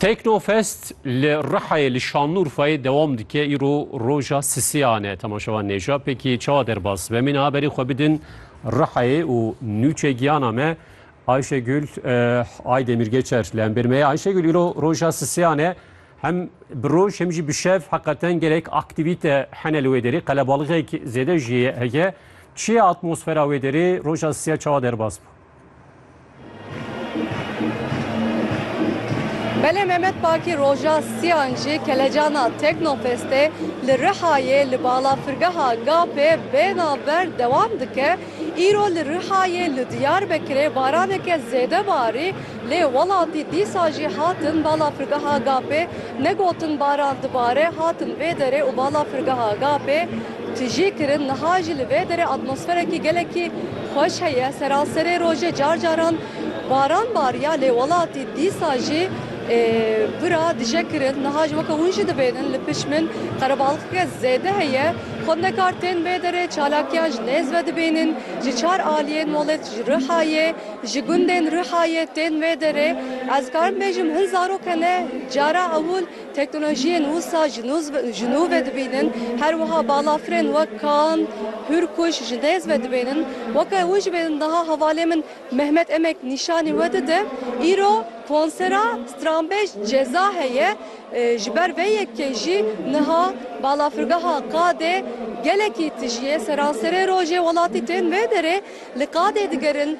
Teknofest li Rihayê li Şanlurfayê dewam dike. Îro roja sisiyan e. Temaşevan nêja pêkî çawa derbas ve. Mîna berî xwe bidin Rihayê û nûçe giyana me Ayşegül Ay Demirgeçer li hembêr me ye. Ayşegül îro roja sisiyan e. Hem bi roj hem jî bi şev heqeten gelek aktîvîte hene li wê derê. Qelebalixek zêde jî heye. Çi ye atmosfera wê derê? Roja sisiya çawa derbas bû? Belê Mehmet Bakî roja siyan jî kelecana Teknofestê li Rihayê li balafirgeha Gapê bêhna ver dewam dike. Îro li Rihayê li Diyarbekirê baraneke zêde barî lê welatî dîsa jî hatin balafirgeha Gapê. Ne gotin baran dibare hatin vê derê û balafirgeha Gapê. Tijî kirin niha jî li vê derê atmosferekî gelekî xweş heye. Seraserê rojê car caran baran bariya lê welatî dîsa jî bira dije kirin. Niha jî weke hûn jî dibênin li pişt min qerebalixeke zêde heye. Xwendekar tên vê derê çalakiyan ji nêz ve dibênin. Ji çar aliyên welêt ji Rihayê, ji gundên Rihayê tên vê derê. Ez dikarim bêjim hin zarok hene cara ewil Teknolojiyên wisa ji nû ve dibînin, her wiha balafirên wek kan, hûrkuş ji nêz ve dibînin. Weke win jî bê niha hevalê min Mehmet Emek nîşanî we dide. Îro konsera stranbêj ceza heye. Ji ber vê yekê jî niha balafirgeha qadê gelekî tijî ye. Seranserê rojê welatî tên vê derê li qadê digerin.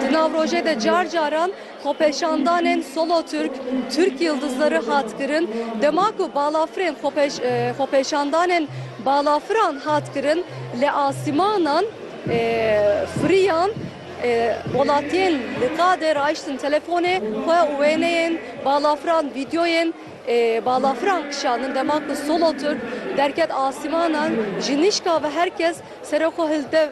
Di nav rojê de car caran xwepêşandanên Solo Türk, Türk Yıldızları hat kirin. Dema ku balafirên xwepêşandanên balafiran hat kirin li asîmanan firiyan welatiyên li qadê raiştin telefonê xwe û wêneyên balafiran vîdyoyên balafiran kişandin. Dema ku Solo Türk derket asîmanan ji nîşka ve her kes Seroko hilde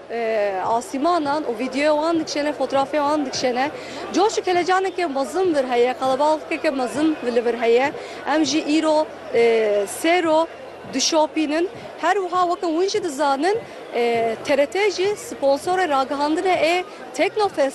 asîmanan û vîdeoya wan dikişêne, fotrafya wan dikişêne. Coş û kelecaneke mezin vir heye, qelebalixkeke mezin li vir heye. Em jî îro sêro dişopînin. Her wiha weke hûn jî dizanin TRT jî sponsorê ragihandinê ê Teknofestê.